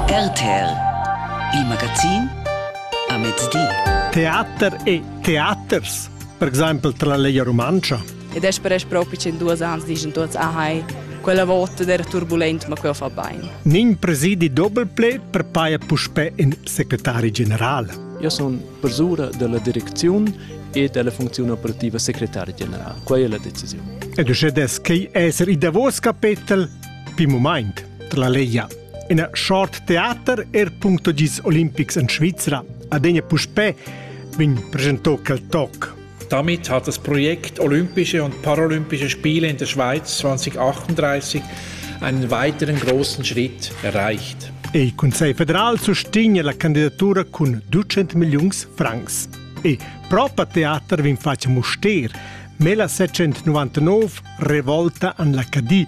RTL Il magazin a mezdi. Teater e teaters, per exempel tra la Lega Rumantscha. Ed es per es propi in duos ans dischan tuots ahai, quella vota d'era turbulent, ma quella fa bain. Nin presidi doppelple per paia puspè in secretari general. Io son persura della direcziun e della funzione operativa segretario generale. Quella è la decisione. Ed uscè des che esser i davos capetel Pin mumaint, la Leia. Ina short teater er punto gis olimpics en Svizra. Adegna puspè vegn presentò quel toc. Damit hat das Projekt Olympische und Paralympische Spiele in der Schweiz 2038 einen weiteren großen Schritt erreicht. Il Consiglio federal sostiene la candidatura con 200 milioni francs. E proprio teater vin faccia muster. Mela 699 Revolta an la Cadi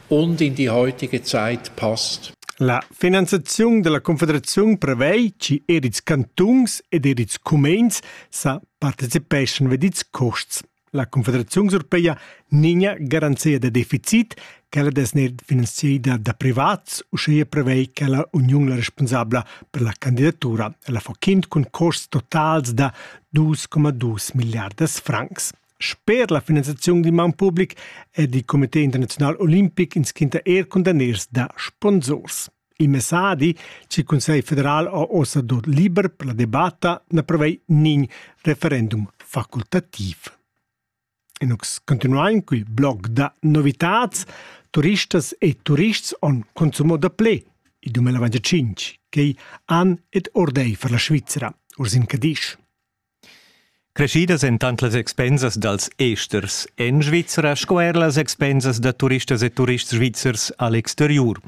Onn in die heutige Zeit passt. La finanziaziun della Confederaziun prevei che er ils cantuns ed er ils cumens sa participeschan ved ils costs. La Confederaziun europeia ninha garanzia da deficit, quella des ner finanziada da privats, uscheia prevei che la Uniun la responsabla per la candidatura. La fochind cun costs totals da 2,2 miliardas francs. Sper la finanziaziun d'in maun public è il Comité internaziunal olimpic inschinta er cundaners da sponsors. Il messadi ch'il Cussegl federal ha ossa dot liber per la debatta na prevei nin referendum facultativ. E nus continuain cul blog da novitats turistas e turists on consumo da ple il 2025, chei an ed ordei for la Svizzera, Ursin Cadisch. Creschidas èn tant las expensas dals esters en Svizra sco er las expensas da turistas e turists svizzers a l'exteriur.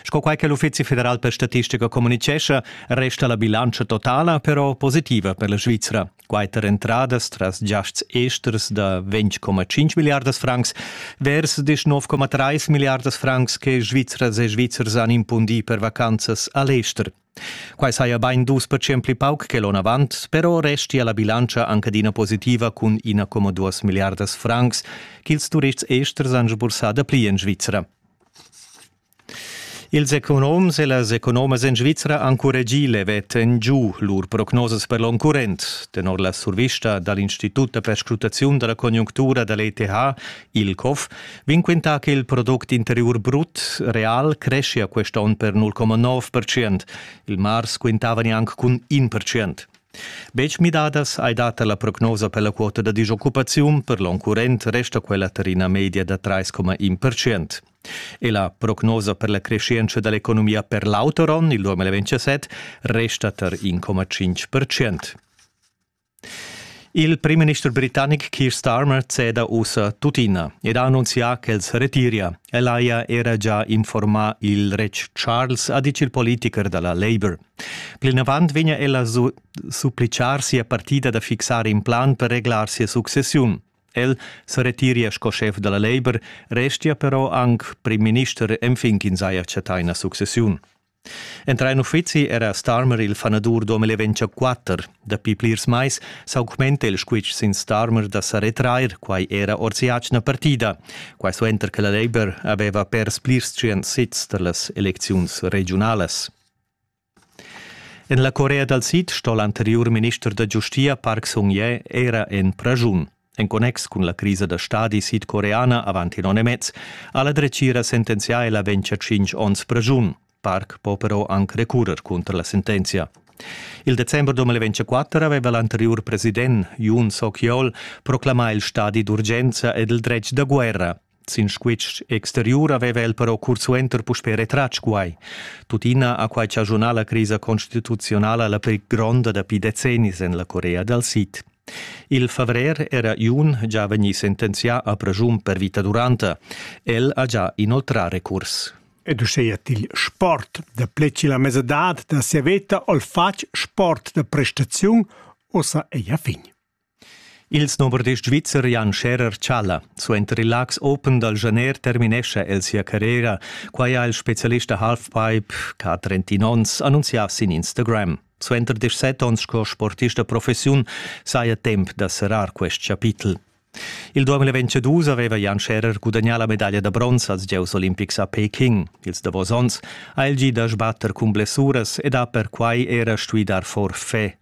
Sco quai che l'Uffizi federal per statistica communitgescha, resta la bilantscha totala però positiva per la Svizra. Quatter entradas tras giasts esters da 20,5 miliardas francs vers die 9,3 miliardas francs che Svizras e Svizzers han impundì per vacanzas a l'ester. Quai saja bain dus percent pli pauc che l'onavant, però restia la bilantscha anc adina positiva cun ina coma duas milliardas francs ch'ils turists esters han sbursà dapli en Svizra. Ils economs e las economas en Svizra han curregì levet en giu lur prognosas per l'onn current. Tenor la survista da l'Institut da perscrutaziun da la conjunctura da l'ETH Il COF vegn quintà che il product interiur brut real creschia quest onn per 0,9%. Il mars quintava neanc cun 1%. Betg midadas hai data la prognosa per la quota da disoccupaziun, per l'onn current resta quella tar ina media da 3,1%. E la prognosa per la crescenza dell'economia per l'auter onn, il 2027, resta tar 1,5%. Il primminister britannic Keir Starmer ceda ussa tuttina ed ha annunzià ch'els retiria. El haja era già informà il retg Charles, ha ditg il politicher da la Labour. Plinavant vegnia el a supplitgar sia partida da fixar in plan per reglar sia successiun. El se retiria sco schef dalla Labour, restia però anc prim minister enfin ch'ins haja chattà ina successiun. Entra in uffizi era Starmer il fanadur 2024. Dapi plirs mais s'augmenta il squitsch sin Starmer da sa retrair, quai era ord si'atgna partida. Quai suenter che la Labour aveva pers plirs tschient sits tar las elecziuns regiunalas. En la Corea dal Sid sto l'anteriur minister da giustia Park Sung-ye era en praschun. En connex cun la crisa da stadi sidcoreana avant in onn e mez ha la dretgira sentenzià ella ventscha tschintg onns pregiun. Park po però anc recurrer cunter la sentenzia. Il december 2024 aveva l'anteriur president Yoon Suk-yeol proclamà il stadi d'urgenza ed il dretg da guerra. Sin squitsch exteriur aveva el però cursuenter puspè retratg quai. Tuttina ha quai chaschunà la crisa constituzionala la pli gronda dapi decennis en la Corea dal Sid. Il favrer era Jun già vegnì sentenzià a pregiun per vita duranta. El ha già inoltrà recurs. Ed uscheia til sport da pleci la mesadad da sia veta ol fatg sport da prestaziun, ossa ei a fin. Ils novardis svizzer Jan Scherer-Tschaler suenter il Laax Open dal Janer terminescha el sia carriera. Quai ha il spezialist da halfpipe ch'ha 31 onns annunzià sin Instagram. Suenter 17 onns sco sportist da professiun saja temp da serrar quest chapitel. Il 2022 aveva Jan Scherer gudagnà la medaglia da bronz als gieus olimpics a Peking. Ils davos onns ha el gì da sbatter cun blessuras ed ha perquai era stuì dar forfè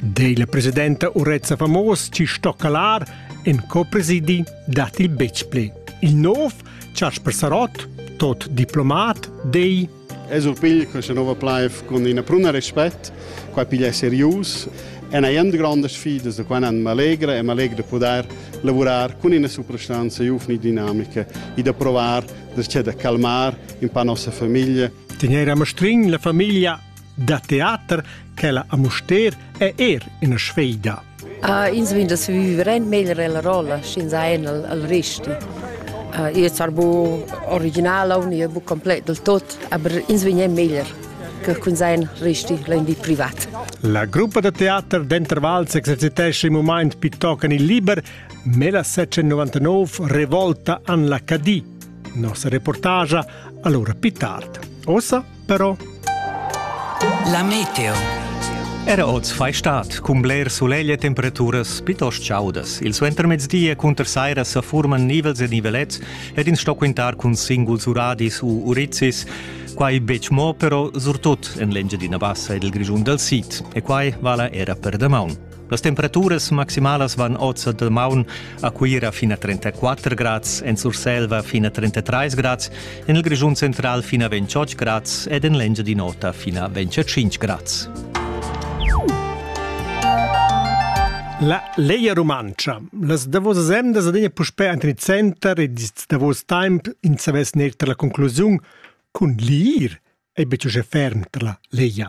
Dei la presidenta Urezza Famos ci stoccalar en co-presidi dat il Betspli. Il nov, Charles Persarot, tot diplomat, dei Es ur pigl questa nova plaiv con ina pruna respect, qua piglia serius. È una grande sfida, da qua mi allegra e mi allegra di poter lavorare con una soprastanza giovane e dinamica e da provare, da, cioè, da calmare un po' la nostra famiglia. Tenere a Mastrin la famiglia da teater ch'ella a Mustér è er ina sfeida. Uh, ins vegn da vivere meglier la rolla, sch'ins ha en al, al resti. Uh, io tar bu original au io bu complet del tot, aber ins vegn meglier che cun sein resti rendi privat. La gruppa da teater d'Intervals exercitesce in moment piuttochen il liber, ma la 799 revolta an la Cadì. Nossa reportagia allora più tardi. Ossa però La meteo Era oz fai stat cun bler sulegl e temperaturas pitost chaudas. Il suentermezdi e cunter saira sa furman nivels e nivelets ed ins sto quintar cun singuls uradis u urizis. Quai betg mo, però surtut en l'Engiadina Bassa ed il Grischun dal Sid. E quai vala era per damaun. Las temperaturas maximalas van oz a damaun a Cuira fin a 34 grads, en Surselva fin a 33 grads, en il Grischun central fin a 28 grads ed en l'Engiadin'Ota fin a 25 grads. La Leia Rumantscha, las davosas emdas adina puspè enten il center ed ils davos temp in savess neir tar la conclusiun cun l'ir ei betg uschè ferm tar la Leia.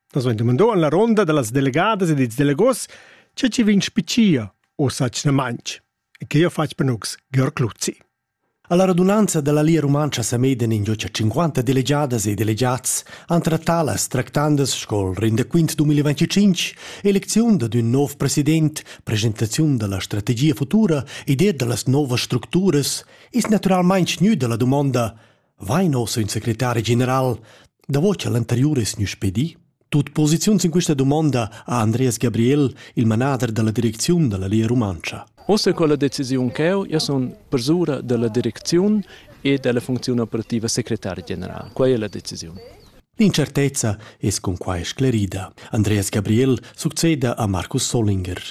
Nus vein demandau en la ronda dallas delegadas ed ils delegos, tge ci vegn spiccia o sacna manch. E che ha fatg per nus Georg Luzzi. Alla radunanza della Lia Rumantscha semeden ingiucia 50 delegadas e delegats han trattà las tractandas sco il rendaquint 2025, elecziun ad un nov president, presentaziun della strategia futura, idea dallas novas structuras, is naturalmein gnü dalla dumonda Vain ossa ün secretari general davo cha l'anteriur es gnü spedì? Tut posiziuns in quista dumonda ha Andreas Gabriel, il manader da la direcziun da la Lia Rumantscha. Ossa con la decisiun ch'eu ja sun persura da la direcziun e da la funcziun operativa secretari general. Quai è la decisiun. L'incertezza es con quai sclerida. Andreas Gabriel succeda a Markus Solinger.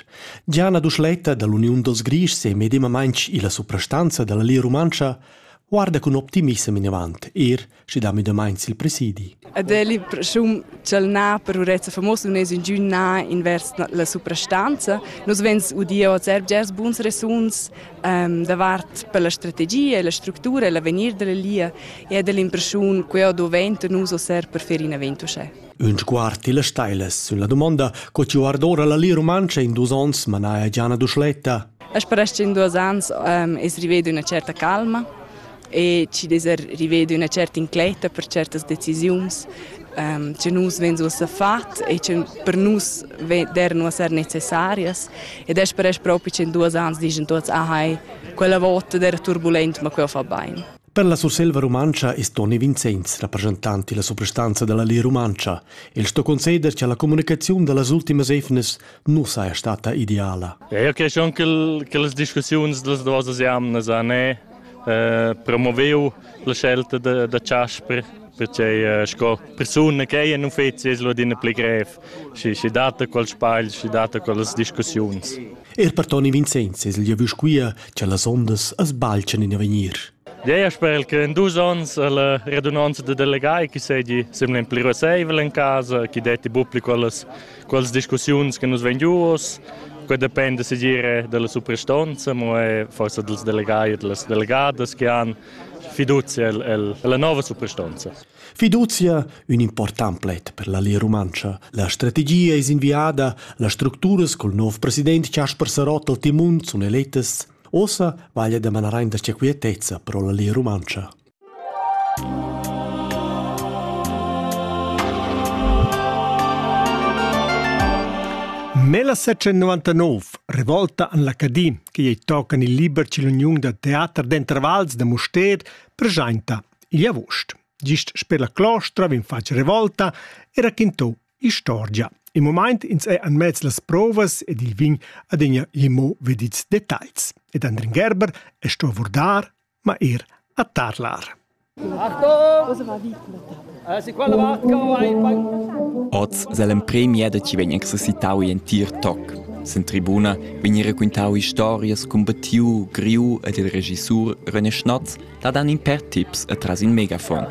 Gianna Duschletta dall'Uniun dals Grischs e medemamainch illa suprastanza da la Lia Rumantscha guarda cun optimissem inavant, er sche da medemaint sil presidi. Ed è il prschum ch'el na per urezza famosa non es ingün na invers la suprastanza. Nus vens udir oz bgers buns resuns ehm, davart per la strategia e la structura e l'avegnir della lia e ed è l'impressiun che o doventa nus o ser per fer in evento c'è. Ün sguard tilla steila sülla dumonda co chi guardora la Lia Rumantscha in duos ons manaja Gianna Duschletta. As paraschi in duos ans um, es rivedu üna certa calma e chi d'esa rivedu üna certa incletta per certas decisiuns um, che nus venzu a fat e che per nus dernu a ser necessarias ed es per es propi che in duos ans digen tuots ah hai quella vota d'era turbulent ma quella fa bain. Per la Surselva rumantscha è Toni Vinzenz rappresentant della suprastanza della Lia Rumantscha. El sto conceder che la comunicaziun dellas ultimas efnes nu saja stata ideala. Eu creschon che las discussiuns das duas jamnas an è eh, promoviu la scelta da, da Chasper perché eh, sco persona che è in uffizi es lo adina pli grev și și data qual sbagl și data qual discussiuns. Er per Toni Vincenz es el giavüsch quia cha las ondas as balchan in avegnir. Gea sper che in dus onns la radunanza da delegai che segi semla pli raseivel in casa, che detti bupli quellas quelles discussiuns che nus ven giuos, que depende se dire della suprastanza, ma è forse dels delegai e delle delegadas che han fiducia alla nova suprastanza. Fiduzia, ün important pled per la Lia Rumantscha. La strategia es inviada, las structuras col nov president Chasper Sarott al timun sun elettas. Ossa vaglia da manar aint da sia quietezza pro la Lia Rumantscha. Nella 799, revolta an l'Acadin, che ei tocan il liber cill'uniun da teater d'intervals da Mustér, preschainta igl avust. Gist sper la clostra vegn fatg revolta e raquintò istorgia. In moment ins è en mez las provas ed il vin adegna limo vedits details. Ed Andrin Gerber è sto abordar, ma er a tarlar. Oz se l'empremia da ci vegn exercitau in tir toc. Sen tribuna vegn raquintau historias cun Battiu, Griu ed il regissur René Schnatz da dan in per tips e tras in megafon.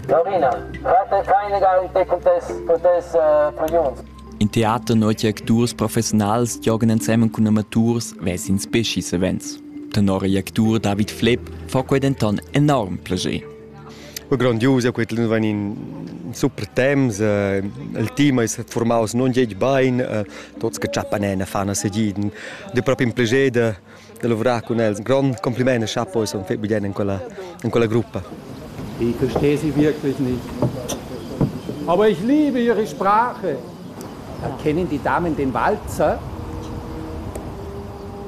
Lorina, rate keine Galität potesse prions. In teater notia acturs professionals giogan ensemen cun amaturs vesin specis events. Tenor il actur David Flepp fa quei denton enorm plascher. Grondius, quei van in super temps, eh, il team è formaus non geg bain, eh, tots che ciappan ne fanno sediden, de proprio un piacere da lavorar cun els. Ein grond compliment e chapo e son fetg bien en quella, in quella gruppa. Ich verstehe Sie wirklich nicht. Aber ich liebe Ihre Sprache. Kennen die Damen den Walzer?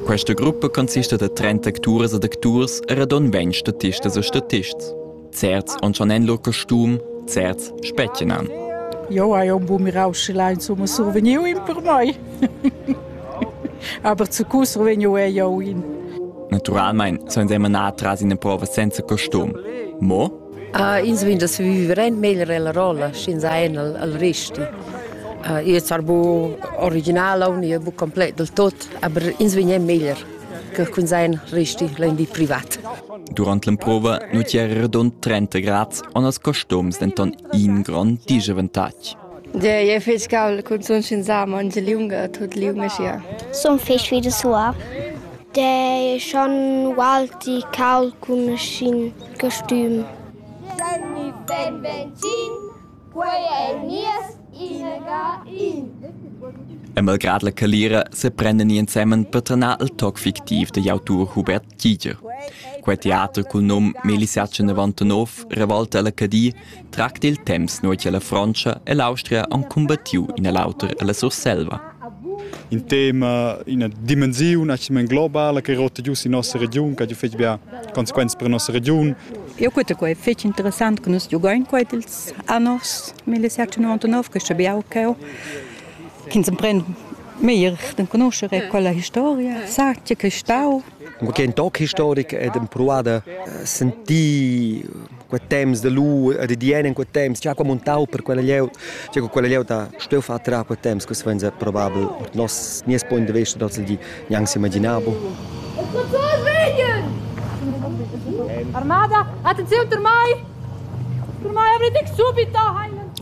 Questa gruppa consiste da 30 acturs ed acturs e radon 20 statists e statists. Certs on schon en lur costum, certs spetgenan. Jo hai un bu mirau sche lai insomma survegniu in per mai. Aber zu cu survegniu è jo in. Naturalmente sono siamo atras in prova senza costum. Mo? Uh, ins vegn da viver rent meglio la rolla, senza en al, al resti. Uh, io sar bu original, io bu complet del tot, aber ins vegn meglio. che cunzegn resti in di privat. Durant l'emprova nu ti era redond 30 grads, on als costums denton in grond disavantatg. Ja, je fec caul cun sun sin sam on liunga tut liu meschia. Sun fec vi de sua. De schon walti caul cun sin costüm. Danni ben benzin. Quei ei nies inaga in. E malgrad la calira seprendan ni ensemen per trenar il toc fictiv digl autur Hubert Giger. Quei teater cul num Melisatge 99 revolta ella Cadi tracta il temps nua che la Frontscha e l'Austria han cumbattiu in e l'auter ella Surselva. Il tema, ina dimensiun actualmain globala che rotta giu sin nossa regiun, che ha fetg bia consequenze per nossa regiun. Eu quete quai fetg interessant che nus giugain quai ils annos 1799 che sabiau ch'eu ins empren meglier de conoscere quella historia sa che che stau Cur ch'ei toc historic ed empruada sentir quei temps da lu e da dien en quei temps, gia qua montau per quella glieud, gia qua quella glieud ha stuiu far trar quei temps, questo venza probabel ord nos nies punct de vista dals di gnanc s'imaginabo. Armada, attenzione per mai! Per mai avrete subito!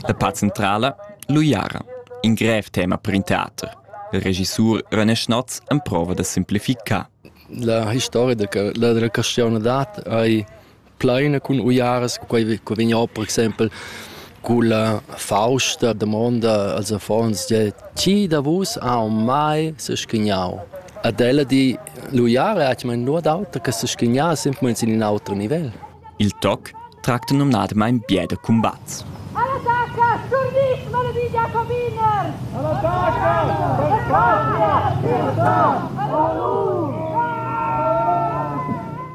La part centrala, l'uiara, in grev tema per in teater. Il regissur René Schnatz emprova da simplificar. La historia da la caschiona dat ei pleina cun uiaras, quei che vegn per exempel culla fausta damonda als affons de ti da vus ha mai se schignau. Ad ella di l'uiara hat man nur d'auter che se schignà simpelmente in un altro nivel. Il toc tracta numnadamain bia da cumbats.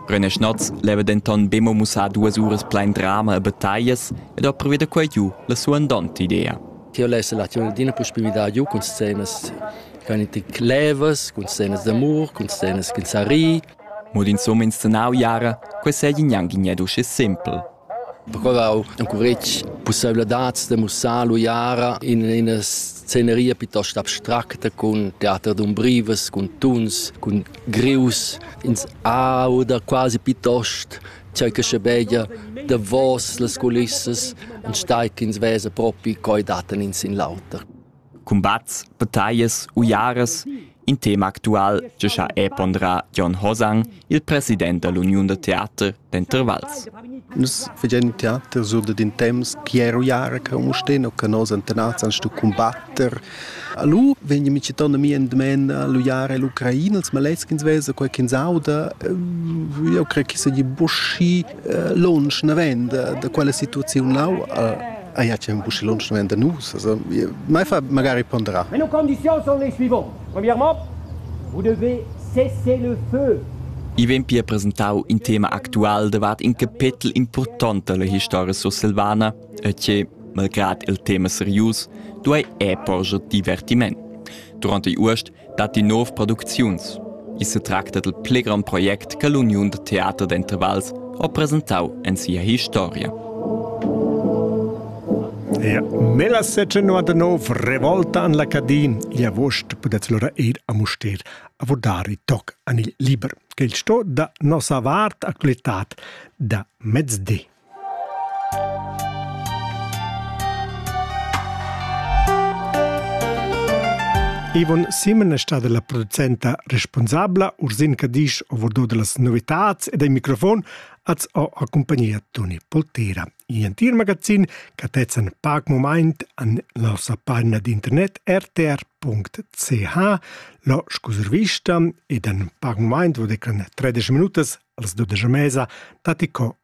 René Schnotz leva denton be mo mussar duas uras plein drama e battaglias ed ha previu da quei giu la sua andonta idea. Ti lessa l'aczione d'ina possibilità giu cun scenas che ein levas, cun scenas d'amur, cun scenas che sa ri. Mo d'ins homens tenau jara, quei seigi gnanc gned uschi sempel. Perquau encuretg pusseivladads da mussar lu jara in ina sceneria piuttost abstracta cun teater d'umbrivas, cun tuns, cun grius. Ins auda quasi piuttost tgei che schebeglia davos las culissas, enstagl ch'ins vesa propi coi daten in sin l'auter. cumbats, battaglias, uiaras. In tema actual che ha è ponderà Jon Hosang, il president dell'Uniun da teater d'Intervals. Nus facendo teater sur da din temps chi è uiara che un sten o che nos antenats an stu combatter. Allo vegni mi citando mi en domen l'uiara e l'Ucraina, els maleschins vesa quel che sauda. Eu crei che sagli buschi lunsch naven da, da quella situaziun lau a ja c'è un busci lunsch naven da nus also mai fa magari ponderar mais nos conditions sont les suivantes premièrement vous devez cesser le feu I vegn pia presentau in tema actual davart in capetel important dalla historia sursilvana e che, malgrad il tema serius, duei è porger divertiment. Durante Urst datti nov producziuns. I setracta dal pli grond project che l'Uniun da teater d'intervals ha presentau en sia historia. Ja, nella 1799 revolta an la Cadin gli agost pudez lora ir a Muster a vodare toc an il liber, che il sto da nossa vart actualitat da mezdi. Ivon Simon è stata la producenta responsabla Ursin Cadisch overdo las novitads ed ai microfon az ho a compagnia Toni Poltera. In entir magazin che tezzan pac moment an la nossa pagina d'internet rtr.ch lo scuservista ed an pac moment vo declan 13 minutas als 12 mesa tati co